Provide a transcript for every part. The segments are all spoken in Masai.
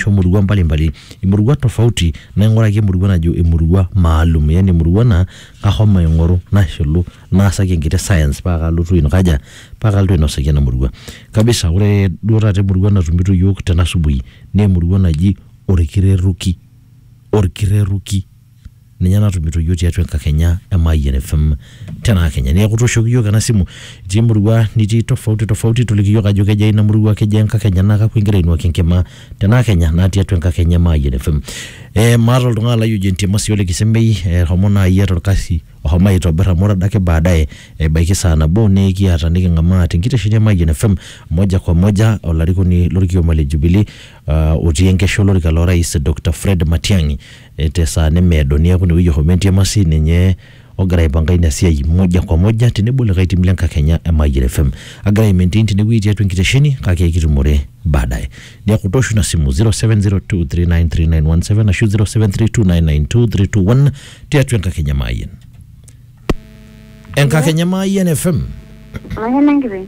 ashu murua mbalimbali imurua tofauti naing'uraki emurua najo emurua maalum yani emurua naa kahomo aing'oru nashilu naasaki enkiti science paa kalotu aikaja paa kalotu ainosaki ena murua kabisa ore duo taata emurua natumito iyiok tena asubuhi naa emurua naji orkireruki orkireruki. ninye natumito yiok tiatua enkakenya e Mayian FM tenaa Kenya. Neeku tooshoki yiok ena simu itii emurua nitii tofauti tofauti toliki yiok ajo kejaa ina murua, kejaa enkakenya naa kakwa igira ainuaki enkima tenaa Kenya naa tiatua enkakenya e Mayian FM. Eh maata oltung'ani lai oji Entiamasi Ole Kisemei eshomo naai eeta orkasi oshomo aitobirr amu ore adake baadaye ebaiki saa nabo nekiata niking'amaa tenkitesheni e Mayian FM moja kwa moja olarikoni lorkioma le Jubilee otii enkesha olorika lorais Doctor Fred Matiang'i E, te saa nemeedo niaku inewueji ohomo entiamasi ninye ogira aipanga ina siai moja kwa moja tenebo likae tim le nkakenya e Mayian FM. Agira ai maintain tenewueji tiatua enkitesheni kake ekitumore baadaye. Niaku toosho ina simu 0702393917 ashu 0732992321 tiatua enkakenya e Mayian. enkakenya maayian fm Mayian enkiteng.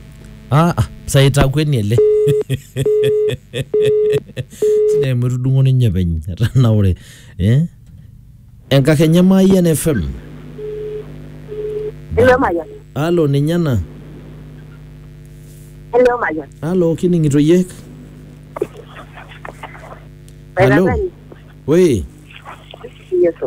ah, ah, saitakueni ele sidai amu etudung'o ninye peny etanaure eh? enkakenya maayian fm Hello Mayian. alo ninye ena Hello Mayian. alo kining'ito yiek Hello. Mayian. woi Yesu.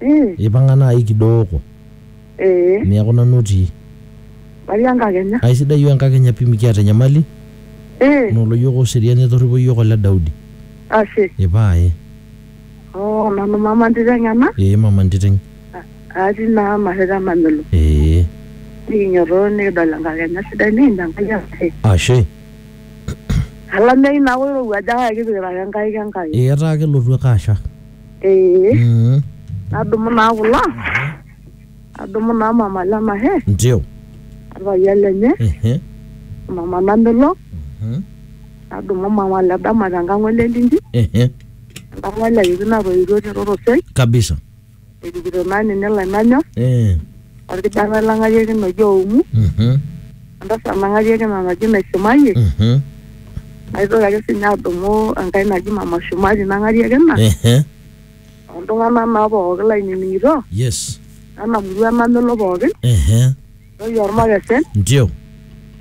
Eh, ipang'a naaji kidooko eh, neeku nanu otii matii enkakenya. aisidai iyiook enkakenya pii mikiata enyamali Eh, nolo iyiook oserian etorripo iyiook ole Daudi ashe. ipae Oh, nanu mama ntiteng' ena. ee mama ntiteng Atii naa Marreta Namelo. ee Nikinyototoo nikidol enkakenya sidai nikinya Enkai enashe. ashe Olameyu naa oirowua ajo kake kipikita ake nkaik Enkai. ee etaa kelotu ake asha ee Mm. nadumu naa kulo adumu naa mama lenahe Ndio. orpayian lenye Ehe. mama namelok Mhm. nadumu mama le dama tenkang ole linji Ehe. enkang ole kiti natoiwuo terorosei Kabisa. erikito naa ninye lainanyor Eh. olkijanai lang'ariakino oji Oumu, Mhm. entasat nang'ariakino naji Naishumayie, Mhm. naitoki ake sii ninye adumu enkae naji Mama Shumari nang'ariakina, Ehe. oltung'anak naa pooki lainining'ito, Yes. ena murua namelo pookin, Ehe. ntoyie olmakesen, Ndio.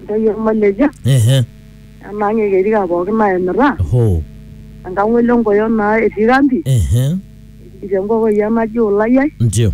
ntoyie olmaleja, Ehe. enaang' e Kerika pooki naimita, Hoo. enkang'ole Nkoyo naa etii kambi, Ehe. etii enkokoi naji Ulayai, Ndio.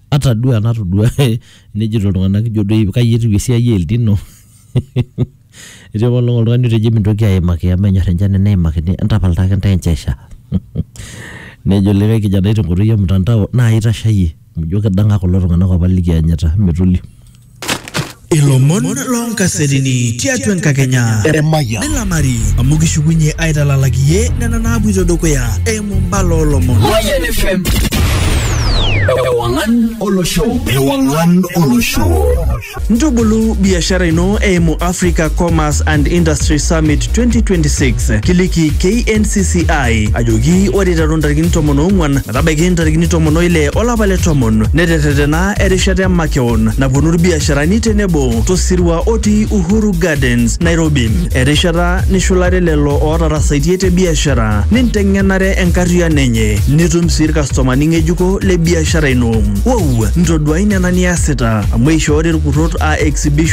ata duo enatodua nejito iltung'anak ijo doi kai etiu esiai e El Nino etii apa olong oltung'ani otejo emintoki aimaki amu menyorr enchan eneimakini entapal taake intae enchoo esha nejo likae kijanai tenkoitoi e mtandao naa aitashayie amu ijio kidang'a kulo tung'anak apa likianyita metoliu. Ilomon loonkasetini tiatua enkakenya Emayian. nilamari amu kishukunye aitalalak iye nena naapuito dukuya eimu mbala oolomon. Mayian FM. Ewangan olosho. Ewangan olosho. Ntubulu biashara ino eimu Africa Commerce and Industry Summit 2026. Kiliki KNCCI ajoki ore iteru ntarikini tomon oong'uan metabaiki ntarikini tomon oile olapa le tomon neterretena erishata e makeon Town naponu irbiasharani tenebo tosirua otii Uhuru Gardens, Nairobi. Erishata nishulare lelo ootarasaitie te biashara ninteng'enare enkarriano enye nitum sii irkastomani ng'ejuko le biashara ino. Wou! Ntoduai nena niasita amu eishoori irkurrot aa exhibition